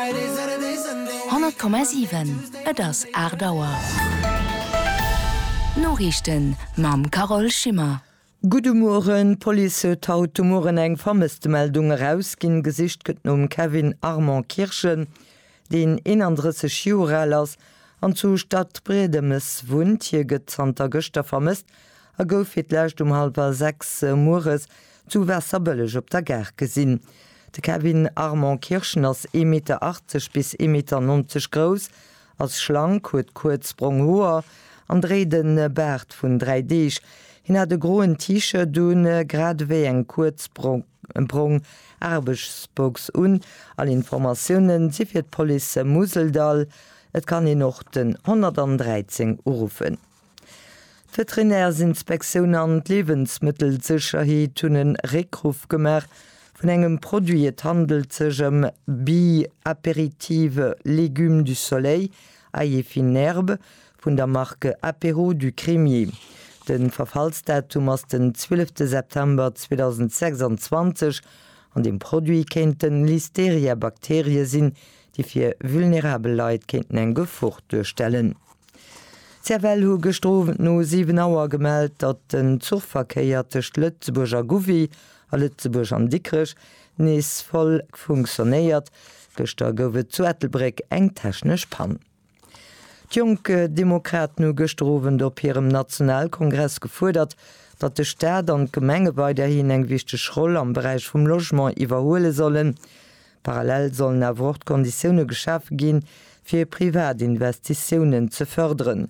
100,7 Et ass 8 Auer. D'Noriichten mam Carole Schimmer. Gudde Mueren, D'Police huet haut de Mueren eng Vermësstemeldung erausginn. Gesicht gëtt nom Kevin Armand Kirschen, deen 31 Joer al ass an zu Stadbriedemes wunnt. Hie gëtt zanter gëschter vermësst a gouf fir d'lescht um hallwer 6 mueres Zu Waasserbëlleg op der Gare gesinn. De Kevin Armand Kirschen ass ee Meter 80 bis ee Meter 90 grouss, ass schlank, huet kuerz brong Hoer an dréit e Baart vun dräi Deeg. Hien hat e groen T-Shirt un, grad ewéi eng kuerz brong Aarbechtsbox un. All Informatioune si fir d'Police Museldall. Et kann een och den 113 uruffen. D'Veterinärsinspektioun an d'Liewensmëttelsécherheet hunn e Réckruff gemaach vun engem Produit. Et handelt sech ëm Bi Apéritive Légumes du Soleil, Ail fine herbe, vun der Marque Apéro du Crémier. De Verfallsdatum ass den 12 September 2026 an dem Produit kéinten Listeria-Bakterie sinn, déi fir vulnerabel Leit kéinten eng Gefor duerstellen. D'CFL hu gëschter Owend no 7 Auer gemellt, datt den Zuchverkéier tëscht Lëtzebuerg a Gouvy a Lëtzebuerg an Dikrech nees voll funktionéiert. Gëschter gouf et zu Ettelbréck eng technesch Pann. D'Jonk Demokraten hu gëschter Owend op hirem Nationalkongress gefuerdert, datt de Staat an d'Gemenge weiderhin eng wichteg Roll am Beräich vum Logement iwwerhuele sollen. Parallel sollen awer och d'Konditioune geschafe ginn, fir privat Investitiounen ze fërderen.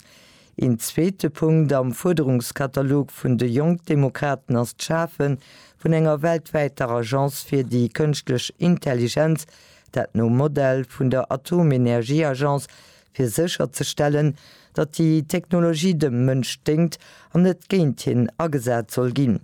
Een zweete Punkt am Fuerderungskatalog vun de Jonk Demokraten ass d'Schafe vun enger weltwäiter Agence fir déi kënschtlech Intelligenz, dat nom Modell vun der Atomenergieagence fir sécherzestellen, datt déi Technologie dem Mënsch déngt an net géint hien agesat soll ginn.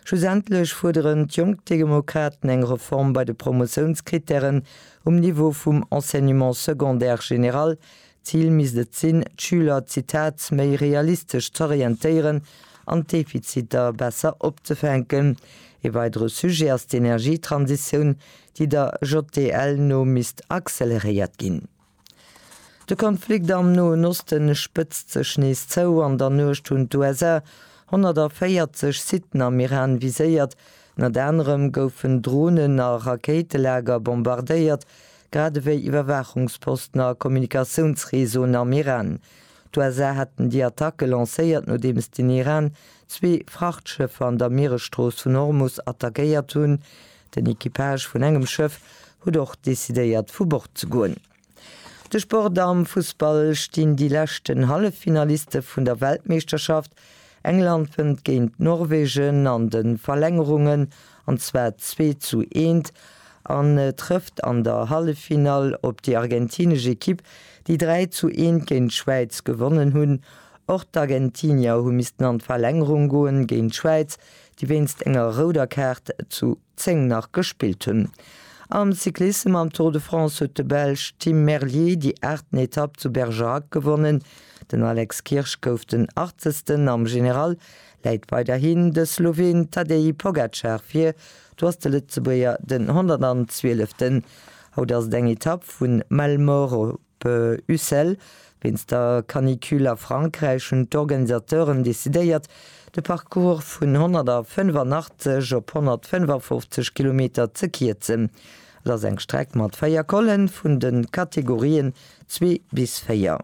Schlussendlech fuerderen d'Jonk Demokraten eng Reform bei de Promotiounskrittären um Niveau vum Enseignement secondaire général. D'Zil misst et sinn, d'Schüler, Zitat, méi realistesch z'orientéieren an d'Defiziter besser opzefänken. Ee weidere Sujet ass d'Energietransitioun, déi der JDL no misst acceleréiert ginn. De Konflikt am Noen Oste spëtzt sech nees zou. An der Nuecht hunn d'USA 140 Siten am Iran viséiert. Ënnert anerem goufen Dronen a Rakéitelager bombardéiert, grad ewéi Iwwerwaachungsposten a Kommunikatiounsreseauen am Iran. D'USA haten déi Attacke lancéiert, nodeems den Iran zwee Frachtschëffer an der Mieresstrooss vun Hormus attackéiert hunn, Den Equipage vun engem Schëff huet och decidéiert vu Bord ze goen. De Sport am Fussball stinn déi leschten Halleffinaliste vun der Weltmeeschterschaft. England wënnt géint Norwegen an de Verlängerungen, an zwar 2 zu 1, an trëfft an der Halleffinall op déi argentinesch Ekipp, déi 3 zu 1 géint d'Schwäiz gewonnen hunn. Och d'Argentinier hu missten an d'Verlängerung goen géint d'Schwäiz, déi wéinst enger rouder Kaart zu 10 nach gespillt hunn. Am Cyclissem am Tour de France huet de Belsch Tim Merlier déi aachten Etapp zu Bergerac gewonnen. Den Alex Kirsch gouf den Achtzegsten, am General läit weiderhin de Sloween Tadej Pogacar vir, do ass de Lëtzebuerger den 112. Haut ass et eng Etapp vun Malmoro. P. Ucel, Wéinst der Canicule a Frankräich hunn d'Organisateuren decidéiert, de Parcours vun 185 op 155 Kilometer ze kierzen. Et ass eng Streck mat véier Collen vun de Kategorien zwee bis véier.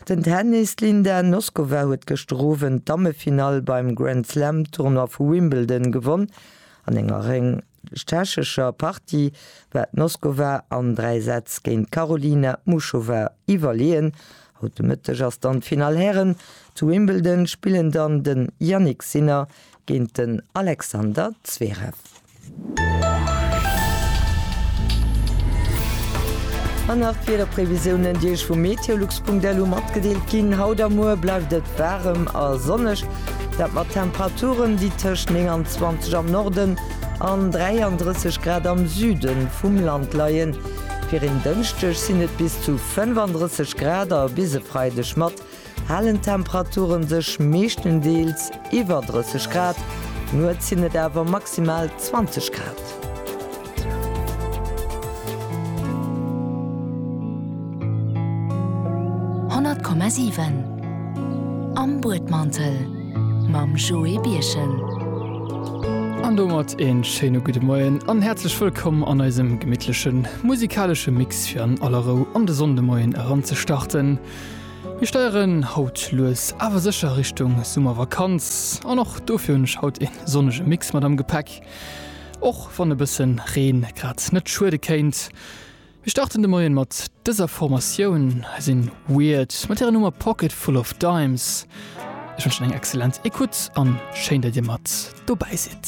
Den Tennis, D'Linda Noskova huet gëschter Owend d'Dammefinall beim Grand-Slam-Tournoi vu Wimbledon gewonn an enger tschechescher Partie war d'Noskova an dräi Sätz géint d'Karolina Muchova iwwerleeën. Haut de Mëtteg ass dann d'Finall Hären. Zu Wimbledon spillen dann de Jannik Sinner géint den Alexander Zverev. An nach d'Wiederprevisiounen, déi Iech vu meteolux.lu matgedeelt ginn. Haut a muer bleift et waarem a sonneg. Dat mat Temperaturen, déi tëscht 29 am Norden an 33 Grad am Süde vum Land leien. Fir en Dënschdeg sinn et bis zu 35 Grad a bis e Freideg mat halen Temperature sech meeschtendeels iwwer 30 Grad. Nuets sinn et awer maximal 20 Grad. Honnert Komma siwen Am Buedmantel mam Joé Birchen. An domat een schéine gudde Moien an häerzlech wëllkomm an eisem gemittlechen musikalesche Mix fir an aller Rou an de Sonndemoien eranzestarten. Mir steieren haut lues awer sécher Richtung Summervakanz an och dofir hunn ech haut een sonnege Mix mat am Gepäck. Och wann e bëssen Reen grad net schuede kéint. Mir starten de Moien mat dëser Formatioun. Hei sinn Weird mat hirer Nummer Pocket Full of Dimes. Ech wënschen eng excellent Ecoute an schéin dat dir mat dobäi sidd.